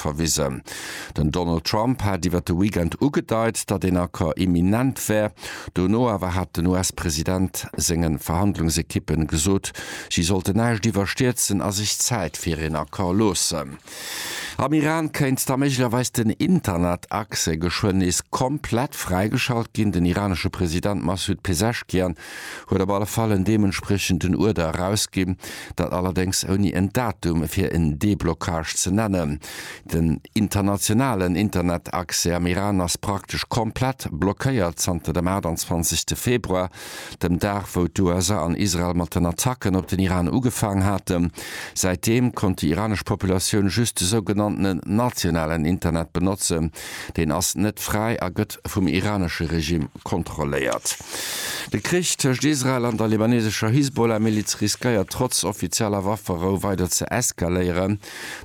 verwisen. Den Donald Trump hat iwwer de Weekend ugedeit, datt een Accord imminent wär. Dono awer hat den US-President senge Verhandlungsekippen gesot, si sollte näischt iwwerstierzen a sech Zäit fir een Accord loossen. Am Iran kéint da méiglecherweis den Internetaccès geschwënn nees komplett fräigeschalt ginn. Den iranesche President Massoud Pezeshkian huet op alle Fall en deementspriechenden Uerder erausginn, dat allerdéngs ouni en Datum fir en Déblockage ze nennen. Den internationalen Internetaccès am Iran ass praktesch komplett blockéiert zanter dem 28 Februar, dem Dag wou d'USA an Israel mat den Attacken op den Iran ugefaang haten. Säitdeem konnt déi iranesch Populatioun just de sougenannten nationalen Internet benotzen, Deen ass net fräi a gëtt vum iranesche Regime kontrolléiert. De Krich tëscht Israel an der libanesescher Hisbollah-Miliz riskéiert trotz offizieller Wafferou weider ze eskaléieren.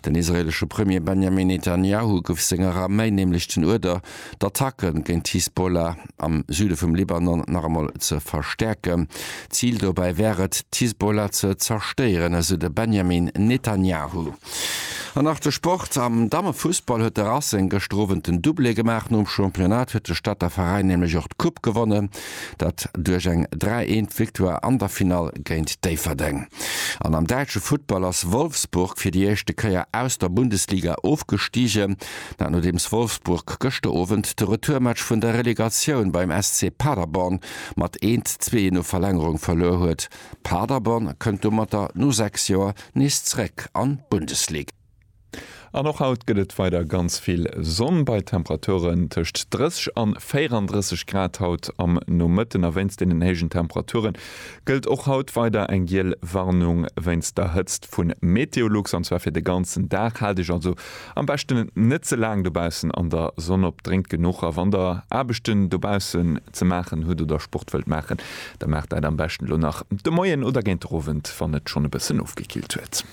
Den israelesche Premier Benjamin Netanjahu gouf senger Arméi nämlech den Uerder, d'Attacke géint d'Hisbollah am Süde vum Libanon nach emol ze verstäerken. Zil dobäi wär et, d'Hisbollah ze zerstéieren, esou de Benjamin Netanjahu. An nach de Sport, Am Dammefussball huet de Racing gëschter Owend den Doublé gemaach. Nom Championnat huet de Stadter Veräin nämlech och d'Coupe gewonnen, dat duerch eng 3, 1 Victoire an der Finall géint Déifferdeng. An am däitsche Futtball ass Wolfsburg fir déi éischte Kéier aus der Bundesliga ofgestigen, dat nodeems Wolfsburg gëschter Owend de Retourmatch vun der Relegatioun beim SC Paderborn mat 1, 2 no Verlängerung verluer huet. Paderborn kënnt domatter no 6 Joer nees zréck an d'Bundeslig. An och haut gëtt et weider ganz vill Sonn bei Temperaturen tëscht 30 an 34 Grad. Haut am Nomëtten a wéinst deenen héijen Temperature gëllt och haut weider eng giel Warnung wéinst der Hëtzt vu Meteolux, an zwar fir de ganzen Dag. Haalt iech also Am beschten net ze laang dobaussen an der Sonn op, drénkt genuch a wann der Aarbechten dobaussen ze maachen hutt oder Sport wëllt maachen, da maacht dat am beschten elo nach de Moien oder géint den Owend, wann et schonn e bëssen ofgekillt huet.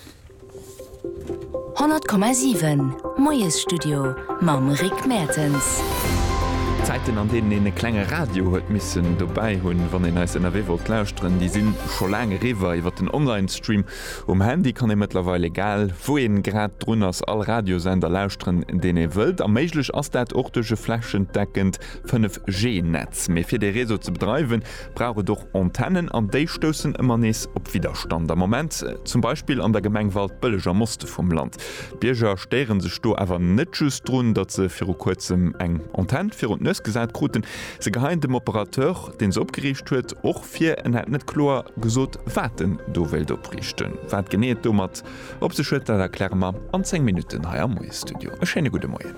100,7 Moiesstudio mam Rick Mertens. D'Zäiten, an deenen een e klenge Radio huet missen dobäi hunn, wann een eis ënnerwee wollt lauschteren, déi si scho laang eriwwer. Iwwer den Online-Stream Um Handy kann ee mëttlerweil, egal wou ee grad drun ass, all Radiosender lauschteren, deen ee wëllt. A méiglech ass dat och duerch e flächendeckend 5G-Netz. Mee fir dee Réseau ze bedreiwen, brauch et och Antennen. An déi stoussen ëmmer nees op Widderstand. Am Moment zum Beispill an der Gemeng Waldbëlleg am Oste vum Land. D'Bierger stéiere sech do awer net just drun, datt se viru kuerzem eng Antenn virun d'Nues gesat kruten. Se geheien dem Operateur, deen se opgeriicht huet, och fir en hätt net kloer gesot wat en do wéilt opriichten. Wat genee et domat op sech huet, dat erkläre mer an 10 Minutten hei am Moie Studio. E schéine gudde Moien.